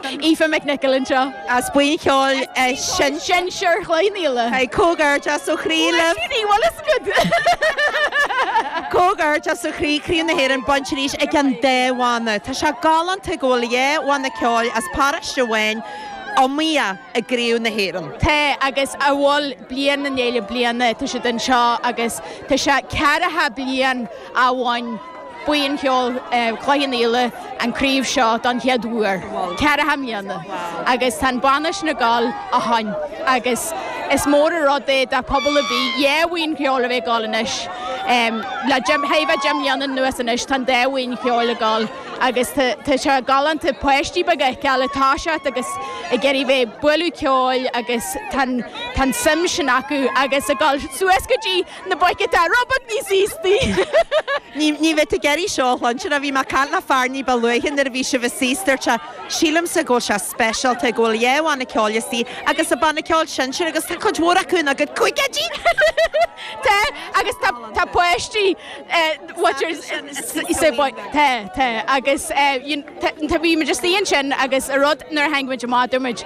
Aoife McNicholl anseo. as buíon cheoil sin sinsear Chloich Cheann Fhaola. Tá comhghairdeas ó chroí leat Ní bhfuil is good. comhghairdeas ó chroí, Craobh na hÉireann bainte arís ag an dá bhanna. Tá sé galánta go bhfuil dhá bhanna ceoil as paróiste amháin ag iomaíocht i gCraobh na hÉireann. Tá agus a bhfuil bliain i ndiaidh bliana, tá siad anseo agus tá sé ceathracha bliain ó bhain. Buíon cheoil Chloich Cheann Fhaola an craobh seo don chéad uair ceathracha mbliana agus tá an banna sin ag gabháil ó shin agus is mór an rud é do phobal ar bith dhá bhuíon cheoil a bheith ag gabháil anois. Le thaire deich mbliana anuas anois tá an dá bhuíon cheoil ag gabháil agus tá sé galánta páistí beaga a fheiceáil ag toiseacht agus ag iarraidh bheith ag bualadh ceoil agus tá an tsuim sin acu agus ag dul suas go dtí na boic atá rud beag níos aosta. Ní bheidh tú ag iarraidh seo a chluinstin, a bhí mé ag caint le fear ní ba luaithe nuair a bhí sibhse istigh, dúirt sé, sílimse go bhfuil sé speisialta go bhfuil dhá bhanna ceoil istigh agus an banna ceoil sinsir agus tá cuid mhór acu ina gcuid caogaidí! Tá, agus tá páistí, watchers, sa bhaile, tá, tá, agus you know, tá, bhí muid istigh ansin agus a rud, nuair a tháinig muid amach dúirt muid,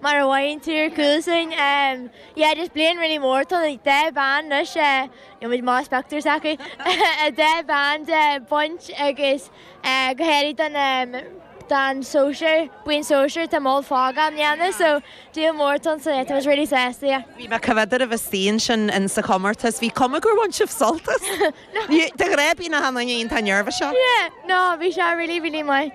Mar a mhaíonn tú, ar chúl sin, yeah, just bliain really mór, tá deich bpeann anois, níl muid más pioctúir s'acu, deich bpeann de baint agus go háirithe don, don sóisear, buíon sóisear, tá moll fágtha á ndéanamh, so deal mór tá ansin, tá muid really sásta, yeah. Bhí mé ag coimhéad oraibh istigh ansin in sa chomórtas, bhí cuma gur bhain sibh sult as, de ghreibín a tháining aon, tá nervous ann? Yeah, no, bhí sé really, really maith.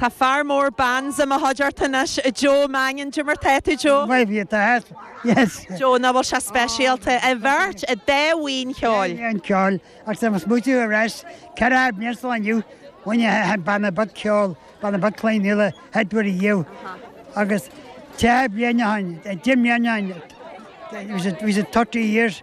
Tá fear mór bands i mo chuideachta anois, Joe Mangan. Cad é mar atá tú Joe? Maith thú, tá thart, yes. Joe, nach bhfuil sé speisialta, an bheirt, an dá bhuíon cheoil. Dhá bhuíon ceoil, agus tá mé ag smaoitiú ar ais, ceathracha bliain ó inniu, bhain an chéad banna beag ceoil, banna beag Chloich Cheann Fhaola, an chéad uair. Agus tríocha bliain ó shin, a deich mbliana ó shin, it was a, it was a 30 years,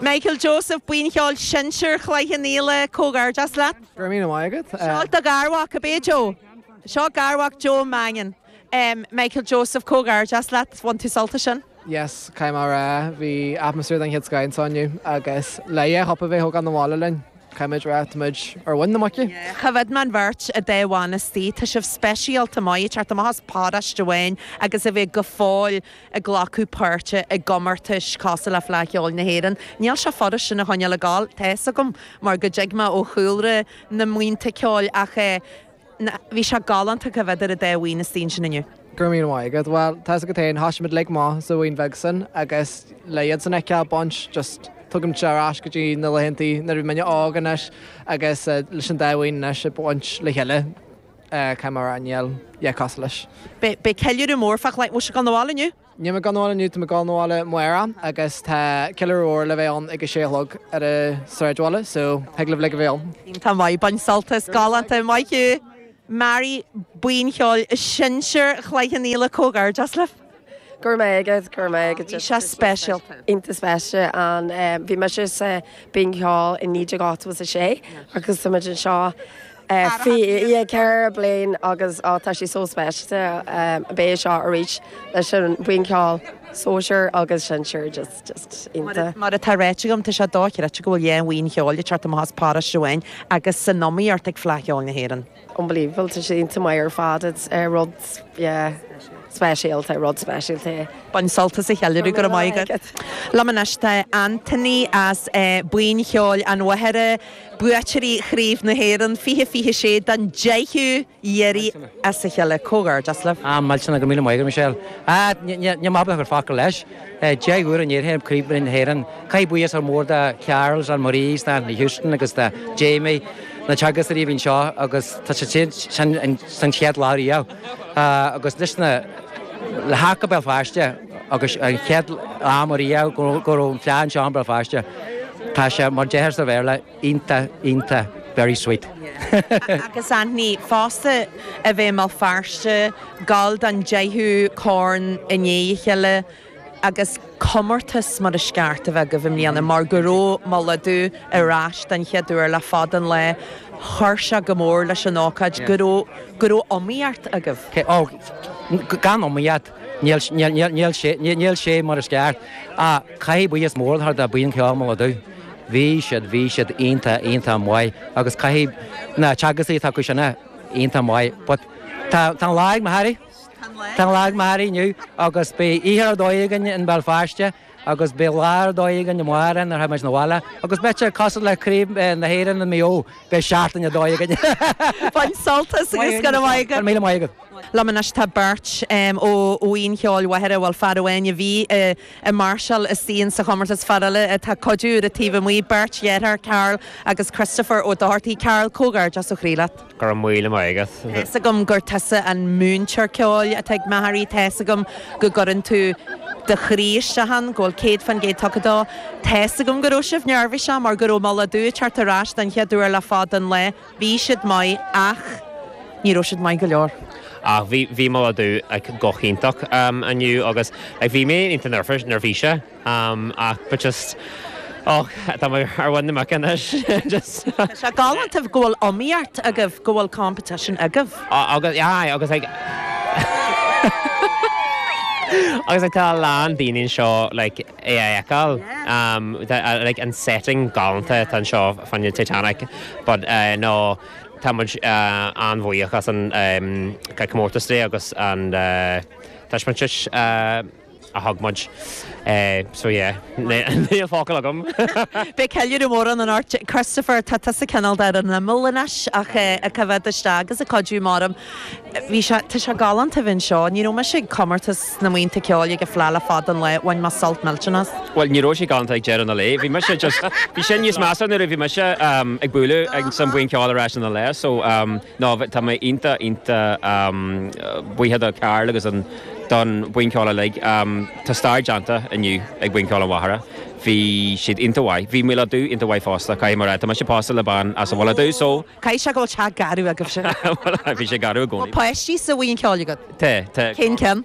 Michael Joseph, Buíon Cheoil Sinsir Chloich Cheann Fhaola, comhghairdeas leat. Go raibh míle maith agat. Seo do gharmhac, ab é Joe? Seo garmhac Joe Mangan. Michael Joseph, comhghairdeas leat, bhain tú sult as sin. Yes, caithfidh mé a rá, bhí atmaisféar den chéad scoth anseo inniu agus le dhá chupa a bheith á thógáil abhaile linn, caithfimid a rá, táimid ar mhuin na muice! Choimhéad mé an bheirt an dá bhanna istigh, tá sibh speisialta a bheith ag teacht amach as paróiste amháin agus a bheith go fóill. ag glacadh páirte i gcomórtais cosúil le Fleadh Cheoil na hÉireann. Níl sé furast sin a choinneáil ag gabháil, tá fhios agam mar go dtig mé ó chúlra na mbuíonta ceoil ach eh na, bhí sé galánta go bhfeictear an dá bhuíon istigh ansin inniu. Go raibh míle maith agat. Bhuel, tá's agat fhéin, thoisigh muid uilig amach sa bhuíon bheag sin agus le iadsan a fheiceáil ag baint just, tugann sé ar ais go dtí na laethanta nuair a bhí muinne óg anois agus eh leis an dá bhuíon anois ag baint le chéile. Caithfidh mé a rá níl a dhath cosúil leis. Beidh ceiliúradh mór fá choinne. Bhfuil sibh ag gabháil 'na bhaile inniu? Níl mé ag gabháil 'na bhaile inniu, tá mé ag gabháil 'na bhaile amárach agus tá ceiliúradh mhór le bheith ann ag a sé a chlog ar an sráidbhaile so thig libh uilig a bheith ann. Iontach maith, bain sult as. Galánta, maith thú. Mary, buíon cheoil sinsear Chloich Cheann Fhaola, comhghairdeas libh. Go raibh maith agat, go raibh maith agat. Bhí sé speisial, iontach speisialta. Bhí mise sa bhuíon cheoil i 1986 agus tá muid anseo ceithre bliain agus tá sé so speisialta a bheith anseo arís leis an bhuíon cheoil sóisear agus sinsear just just iontach. Mar atá ráite agam tá sé dóchreidte go bhfuil dhá bhuíon cheoil ag teacht amach as paróiste amháin agus san iomaíocht ag Fleadh Cheoil na hÉireann. Unbelievable, tá sé iontach maith ar fad, it's eh rud yeah speisialta, rud speisialta é. Bain sult as an cheiliúradh, go raibh maith agat. Liom anois tá Anthony as Buíon Cheoil an Mhachaire, buaiteoirí Chraobh na hÉireann 2026 don 10ú iarraidh as a chéile. Comhghairdeas libh. Ah, mhilteanna, go raibh míle maith agat Michelle. Ah, ní maith beag ar fáth gur leis. 10 uair i ndiaidh Chraobh na hÉireann. Caithfidh buíochas mór a thabhairt do Charles, Ann Marie, Shauna Houston agus do Jamie, na teagascóirí a bhí anseo agus tá siad ansin ón chéad lá riamh agus anois le theacht go Béal Feirste agus an chéad am ariamh go raibh an fleadh anseo in Béal Feirste, tá sé mar a deirtear sa Bhéarla. Iontach, iontach, very sweet. Agus Anthony, fosta, a bheith i mBéal Feirste, ag gabháil don deichiú corn i ndiaidh a chéile, agus comórtas mar is ceart a bheith agaibh i mbliana, mar go raibh Mullach Dubh ar ais den chéad uair le fada an lae, chuir sé go mór leis an ócáid go raibh, go raibh iomaíocht agaibh. Sea, ó, gan iomaíocht. Níl sé mar is ceart, ach caithfidh buíochas mór a thabhairt do Bhuíon Cheoil Mhullach Dubh. Bhí siad, bhí siad iontach, iontach maith agus caithfidh na teagascóirí atá acu sin a, iontach maith. But tá an lá ag Machaire, tá an lá ag Machaire inniu agus beidh oíche ar dóigh againn in Béal Feirste. agus beidh lá ar dóigh againn amárach nuair a théimid 'na bhaile agus beidh sé cosúil le Craobh na hÉireann i Maigh Eo, beidh seachtain ar dóigh againn. Bain sult as agus go raibh maith agat. Go raibh míle maith agat. Liom anois tá beirt ó Bhuíon Cheoil Mhachaire, bhuel fear amháin a bhí ag máirseáil istigh sa chomórtas, fear eile atá ag cuidiú ar an taobh amuigh, beirt dheartháir, Karl agus Christopher Ó Dochartaigh. Karl, comhghairdeas ó chroí leat. Go raibh míle maith agat. Tá's agam gur tusa an múinteoir ceoil atá ag Maghery, tá's agam go gcuireann tú do chroí isteach ann, go bhfuil céad fán gcéad tugtha dó. Tá's agam go raibh sibh neirbhíseach mar go raibh Mullach Dubh thart ar ais don chéad uair le fada an lae. Bhí siad maith ach ní raibh siad maith go leor. Ach bhí, bhí Mullach Dubh like go hiontach inniu agus like bhí mé iontach neirbhíseach. am ach but just och tá mé ar mhuin na muice anois just. Tá sé galánta go bhfuil iomaíocht agaibh, go bhfuil competition agaibh. Agus aye agus like agus like tá a lán daoine anseo like é a fheiceáil um tá like an setting galánta atá anseo fán Titanic but eh no tá muid eh an-bhuíoch as an eh comórtas de agus an eh taispeántas eh. a thug muid. So yeah, níl focal agam! Beidh ceiliúradh mór ann anocht Christopher, tá tusa cineál ar an imeall anois ach ag coimhéad isteach agus ag cuidiú amach um. Bhí sé, tá sé galánta a bheith anseo. Ní raibh mise ag comórtas na mbuíonta ceoil ag an fleá le fada an lae, bhain mé sult millteanach as. Bhuel, ní raibh sé galánta ag deireadh na lae, bhí mise just, bhí sé níos measa nuair a bhí mise ag bualadh ag an, sa mbuíon ceoil ar ais ina leith so. Nó tá mé iontach, iontach buíoch do Karl agus don bhuíon ceoil uilig. Tá stair déanta inniu ag Buíon Cheoil an Mhachaire. Bhí siad iontach mhaith. Bhí Mullach Dubh iontach mhaith fosta, caithfidh mé a rá. Tá mise pósta le bean as an Mhullach Dubh so. Caithfidh sé go bhfuil teach garbh agaibhse. Bhfuil, bhí sé garbh i gcónaí. Bhfuil páistí sa bhuíon ceoil agat? Tá, tá. Cén ceann?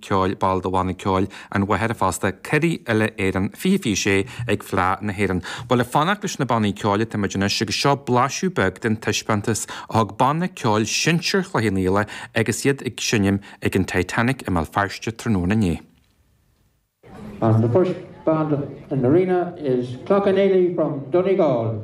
ceoil ball de bhanna ceoil an Mhachaire fosta, curaidh Uile Éireann, 2026 ag Fleadh na hÉireann. Bhuel ag fanacht leis na bannaí ceoil atá muid anois agus seo blaiseadh beag den taispeántas a thug banna ceoil sinsir Chloich Cheann Fhaola agus iad ag seinm ag an Titanic i mBéal Feirste tráthnóna inné. And the first band in the arena is Cloughaneely from Donegal.